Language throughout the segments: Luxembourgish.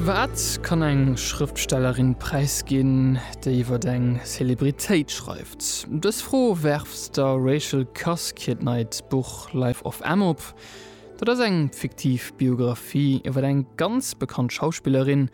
Wat kann eng Schrëftstellerin präisginn, déi iwwer eng Celebritéit schreift? Dës Fro werft der Rachel Cusk hiert neit Buch Life of Em op. Dat ass eng fiktiv Biographie iwwer eng ganz bekannt Schauspillerin,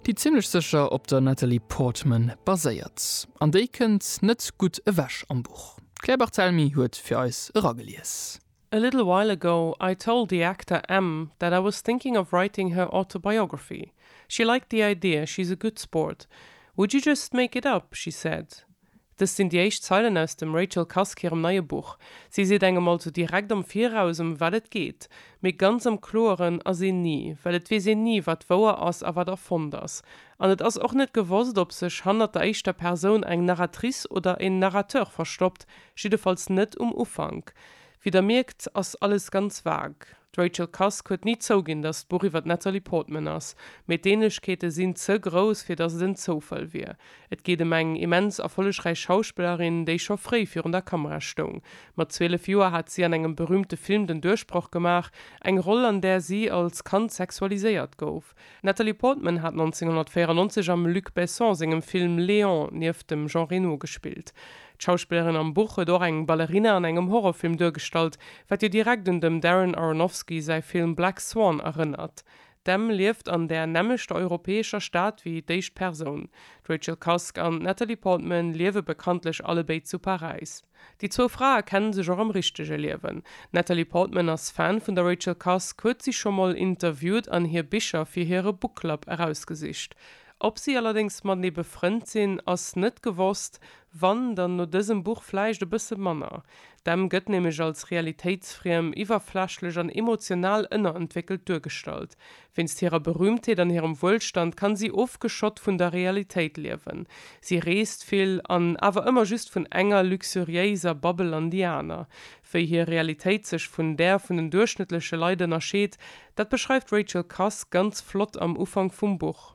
déi zimmlech sécher op der Natalie Portman baséiert. An déi kënnt net gutt ewech am Buch. D'Claire Barthelmy huet fir eis eragelies. A little while ago I told the actor M that I was thinking of writing her autobiography. She liked the idea, she's a good sport. Would you just make it up? she said. Dëst sinn déi éischt Zeilen aus dem Rachel Cusk hirem neie Buch. Si seet engem also direkt am Viraus, ëm wat et geet. Mee ganz am Kloeren ass een ni, well et weess een ni, wat wouer ass a wat erfonnt ass. An et ass och net gewosst, ob sech hannert der éischter Persoun eng Narratrice oder en Narrateur verstoppt, jiddefalls net um Ufank. Wéi der mierkt, ass alles ganz vague. D'Rachel Cusk huet ni zouginn, datt d'Buch iwwer d'Natalie Portman ass, mee d'Ähnlechkeete sinn ze grouss, fir datt et en Zoufall wier. Et geet ëm eng immens erfollegräich Schauspillerin, déi scho fréi virun der Kamera stoung. Mat 12 Joer hat si an engem berüümte Film den Duerchbroch gemaach, eng Roll, an där si als Kand sexualiséiert gouf. D'Natalie Portman hat 1994 am Luc Besson sengem Film Léon nieft dem Jean Reno gespillt. D'Schauspillerin am Buch huet och eng Ballerina an engem Horrorfilm duergestallt, wat jo direkt un dem Darren Aronofsky säi Film Black Swan erënnert. D'Em lieft an där nämmlechter europäescher Stad wéi d'éischt Persoun. D'Rachel Cusk an d'Natalie Portman liewe bekanntlech allebéid zu Paräis. Déi zwou Frae kenne sech och am richtege Liewen. D'Natalie Portman ass Fan vun der Rachel Cusk, huet si scho mol interviewt an hir Bicher fir hire Book Club erausgesicht. Ob si allerdéngs matenee befrënnt sinn, ass net gewosst, wann, dann no dësem Buch vläicht e bësse manner. D'Em gëtt nämlech als realitéitsfriem, iwwerflächlech an emotional ënnerentwéckelt duergestallt. Wéinst hirer Berühmtheet an hirem Wuelstand kann si ofgeschott vun der Realitéit liewen. Si reest vill an awer ëmmer just vun enger luxuriéiser Babbel an déi aner. Wéi hir Realitéit sech vun där vun den duerchschnëttleche Leit ënnerscheet, dat beschreift d'Rachel Cusk ganz flott am Ufank vum Buch.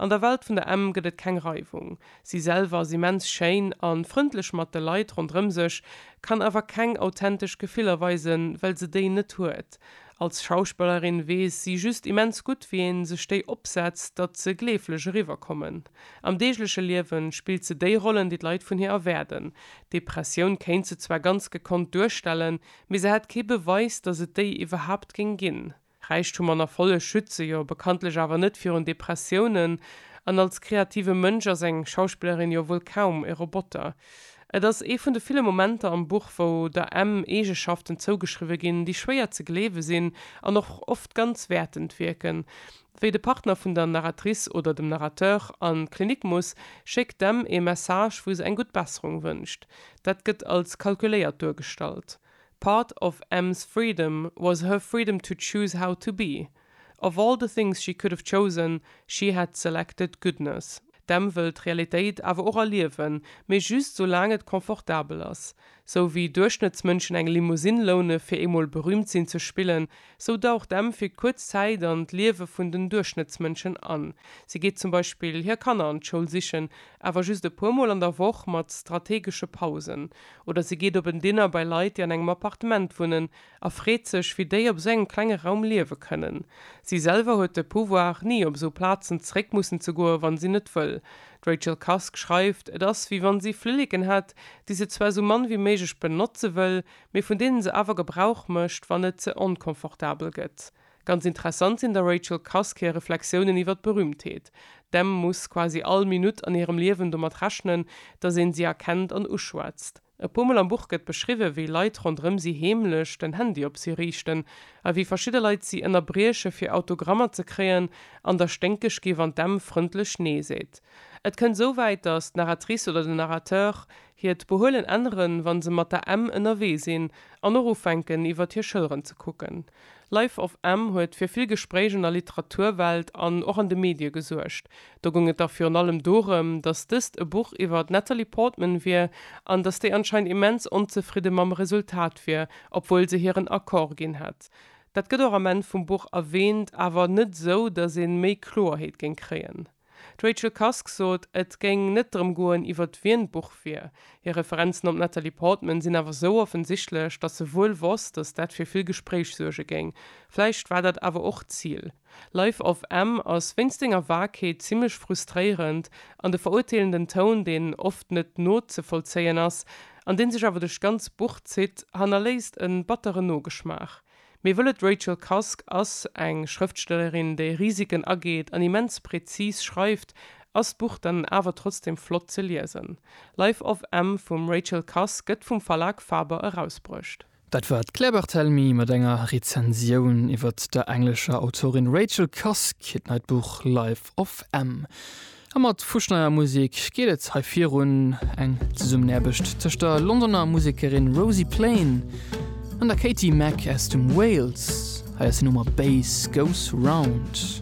An der Welt vun der Emm gëtt et keng Reiwung. Si selwer ass immens schéin a frëndlech mat de Leit ronderëm sech, kann awer keng authentesch Gefiller weisen, well se déi net huet. Als Schauspellerin weess si just immens gutt, wéi ee sech déi opsetzt, datt se gleeflech eriwwerkommen. Am deegleche Liewe spillt se déi Rollen, déi d'Leit vun hir erwaarden. Depressioun kéint se zwar ganz gekonnt duerstellen, mee se hätt kee Beweis, datt et déi iwwerhaapt géing ginn. Räichtum an Erfolleg schütze jo bekanntlech awer net virun Depressiounen, an als kreative Mënsch ass eng Schauspillerin jo wuel kaum e Roboter. Et ass ee vun de ville Momenter am Buch, wou der Em Eegeschaften zougeschriwwe ginn, déi schwéier ze gleewe sinn an och oft ganz wäertend wierken. Wéi de Partner vun der Narratrice oder dem Narrateur an d'Klinik muss, schéckt d'Em ee Message, wou se eng gutt Besserung wënscht. Dat gëtt als kalkuléiert duergestallt. Part of Em's freedom was her freedom to choose how to be. Of all the things she could have chosen, she had selected goodness. D'Em wëll d'Realitéit awer och erliewen, mee just soulaang et confortabel ass. Sou wéi Duerchschnëttsmënschen eng Limousine loune fir eemol berüümt sinn ze spillen, sou daucht d'Em fir kuerz Zäit an d'Liewe vun den Duerchschnëttsmënschen an. Si geet zum Beispill hir Kanner an d'Schoul sichen, awer just e puer Mol an der Woch mat strategesche Pausen. Oder si geet op en Dinner bei Leit, déi an engem Appartement wunnen, a freet sech, wéi déi op esou engem klenge Raum liewe kënnen. Si selwer huet de Pouvoir, ni op esou Plazen zeréck mussen ze goen, wa si net wëll. D'Rachel Cusk schreift, et ass, wéi wa si Flilleken hätt, déi se zwar esou mann wéi méiglech benotze wëll, mee vun deene se awer Gebrauch mécht, wann et ze onconfortabel gëtt. Ganz interessant sinn der Rachel Cusk hir Reflexiounen iwwer d'Berühmtheet. D'Em muss quasi all Minutt an hirem Liewen domat rechnen, datt een si erkennt an uschwätzt. E puer Mol am Buch gëtt beschriwwen, wéi Leit ronderëm si heemlech den Handy op si riichten a wéi verschidde Leit si ënnerbrieche fir Autogrammer ze kréien an der sténkeg gi wann d'Em frëndlech Nee seet. Et kënnt esou wäit, datt d'Narratrice oder den Narrateur hiert Behuelen änneren, wa se mat der Em ënnerwee sinn an och ufänken iwwert hir Schëlleren ze kucken. Life of M huet fir vill Gespréich an der Literaturwelt an och an de Medie gesuergt. Do goung et da virun allem dorëm, datt dëst e Buch iwwer d'Natalie Portman wier an datt déi anscheinend immens onzefridde mam Resultat wier, obwuel se hiren Accord ginn hätt. Dat gëtt och am Enn vum Buch erwäänt, awer net esou, datt ee méi Kloerheet géing kréien. D'Rachel Cusk sot, et géing net drëm goen, iwwert wien d'Buch wier. Hir Referenzen op d'Natalie Portman sinn awer sou offensichtlech, datt se wuel wosst, datt dat fir vill Gespréich suerge géing. Vläicht war dat awer och d'Zil. Life of M ass wéinst senger Vagheet zimmlech frustréierend, an de verurteelenden Toun, deen oft net nozevollzéien ass, an dee sech awer duerch d'ganz Buch zitt, hannerléisst e batteren Nogeschmaach. Mir wëllen D'Rachel Cusk ass eng Schrëftstellerin, déi Risiken ageet an immens präzis schreift. Ass d'Buch dann awer trotzdem flott ze liesen? Life of M vum Rachel Cusk gëtt vum Verlag Faber erausbruecht. Dat war d'Claire Barthelemy mat enger Rezensioun iwwert der englescher Autorin Rachel Cusk hiert neit Buch Life of M. A mat fusch neier Musek geet et hei virun, eng Zesummenaarbecht tëscht der Londoner Musekerin Rosie Plain an der Katie Mack aus dem Wales. Hei ass hir Nummer Bass Goes Round.